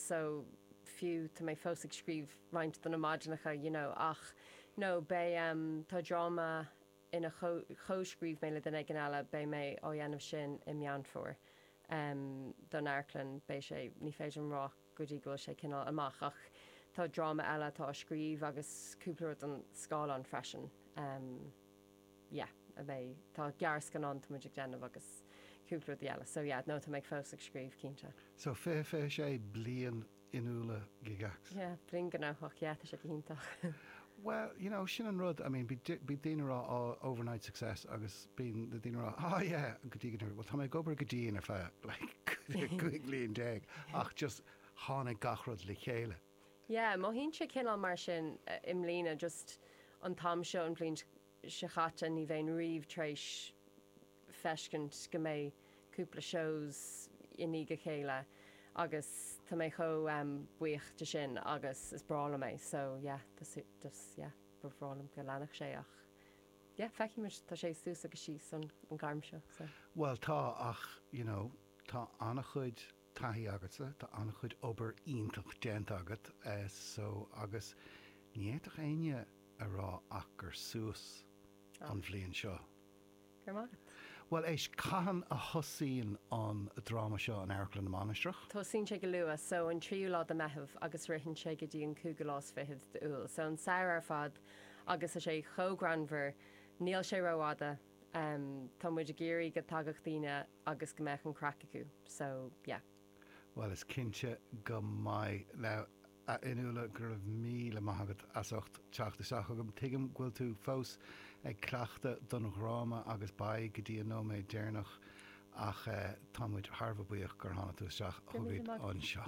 so fiú tá mé fós ag scríobh roinnt de na maidineacha you know ach no beidh em tá dráma a chomhscríobh mé le duine éigin eile beidh mé á dhéanamh sin i Meán Fómhair em don amharclann beidh sé ní féidir liom rá go dtí go bhfuil sé cineál amach ach tá dráma eile atá á scríobh agus cúpla rud don scáileán freisin em yeah, a bheidh, tá gearrscannán atá muid ag déanamh agus cúpla rudaí eile, so yeah, no, tá mé fós ag scríobh, cinnte. So, fiche, fiche sé bliain Fhionnuala Gygax. Yeah, bliain ghnóthach, yeah, tá sé go hiontach. Bhuel, you know, sin an rud, I mean, bíonn daoine ag rá, oh, overnight success agus bíonn na daoine ag rá, oh yeah, go dtí go ndúirt, bhuel, tá mé ag obair go dian ar feadh, like, cúig bhliain déag ach just tháinig gach rud le chéile. Yeah, mothaíonn sé cineál mar sin i mbliana, just an t-am seo an bhliain seo chaite ní bheinn riamh tar éis feiscint go mbeadh cúpla shows i ndiaidh a chéile agus tá mé chomh buíoch de sin agus is breá liom é so yeah, just yeah, ba bhreá liom go leanfadh sé ach yeah, feicfimid, tá sé suas agus síos sa ghairm seo so. Bhuel tá ach, you know, tá an-chuid. taithí agatsa, tá an-chuid obair iontach déanta agat so agus ní fhéadfadh éinne a rá ach gur suas an bhliain seo. Go raibh maith agat. Bhuel, éist, cathain a thosaíonn an dráma seo in Amharclann na Mainistreach? Tosaíonn sé go luath, so an tríú lá de Mheitheamh agus ritheann sé go dtí an cúigiú lá is fichead de Iúil, so an samhradh ar fad agus tá sé chomh greannmhar, níl sé rófhada, tá muid ag iarraidh go dtagadh daoine agus go mbeadh an craic acu so yeah. Bhuel, is cinnte go mbeidh. Now, a Fhionnuala, go raibh míle maith agat as ucht teacht isteach chugainn. Tuigim go bhfuil tú fós ag cleachtadh don dráma agus beidh go dtí an nóiméad deireanach ach eh, tá muid thar a bheith buíoch gur tháinig tú isteach chugainn anseo.